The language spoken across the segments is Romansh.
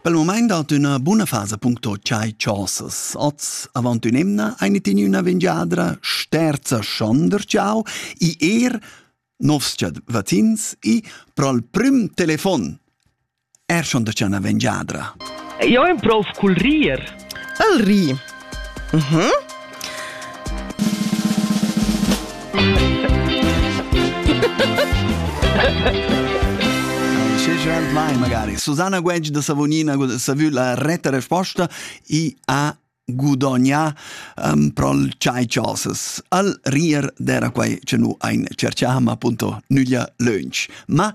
Pel mumaint dat üna buna fasa puncto chai chosas. Oz avant ün'emna eine tin üna vengiadra sterza schonder ciao i er novs vatins i prol prüm telefon. Er schon da c'è una vengiadra. Io è un prof col rir. El ri. Mhm. Mm Mai magari. Susanna Gueggi da Savonina ha vu la retta resposta e ha gudognà um, pro il chai chosas. Al rier d'era quai che nu ein cerchà, ma appunto nüglia lönch. Ma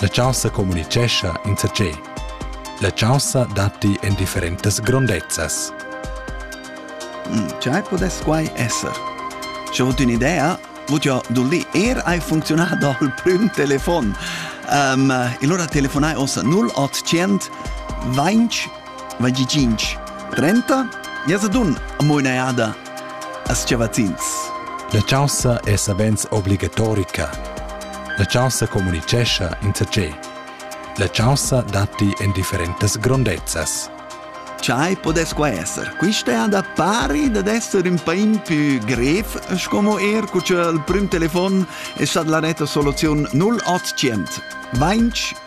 La chaussa communitgescha insatgei. La chaussa datti en differentas grondezzas. Tgei podess quai esser? Sche ho un'idea, vot jo dulli er hai funzionato dal prüm telefon. Um, e allora telefonai ossa 0800 20 25 30 Jas ad un amoinaiada As-chavazzins. La chaunsa è savens obligatorica. La chaunsa communitgescha insatgé. La chaunsa datti en differentas grondezzas. Chai podesqua esser? Quista è da pari dad esser un pain più grev, como er cu il prim telefon è stat la netta soluzion 0800 20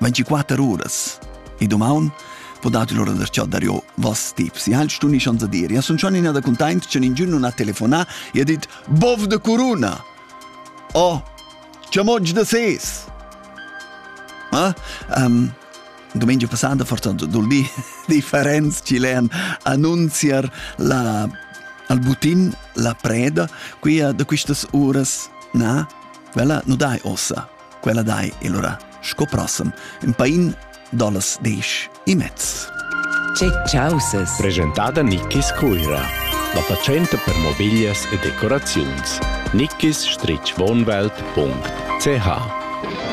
24 uras. E domaun po dati l'ora da chat dario vas tips. E halt stuni schanza dir. Ja sun schon in da containt, chen in giun non ha telefonà e ha dit Bov de Corona! Oh, chamoggi da ses! Ah? Um, domenica passata fortuna dul di differenz ci len annunziar la al butin la preda qui da quistas uras na vela nu dai ossa quella dai e lura sco prossem in pain dallas desch e mezz. Che chausas! Presentada Nickis Cuira, la fatschenta per mobiglias e decoraziuns. Nickis-wohnwelt.ch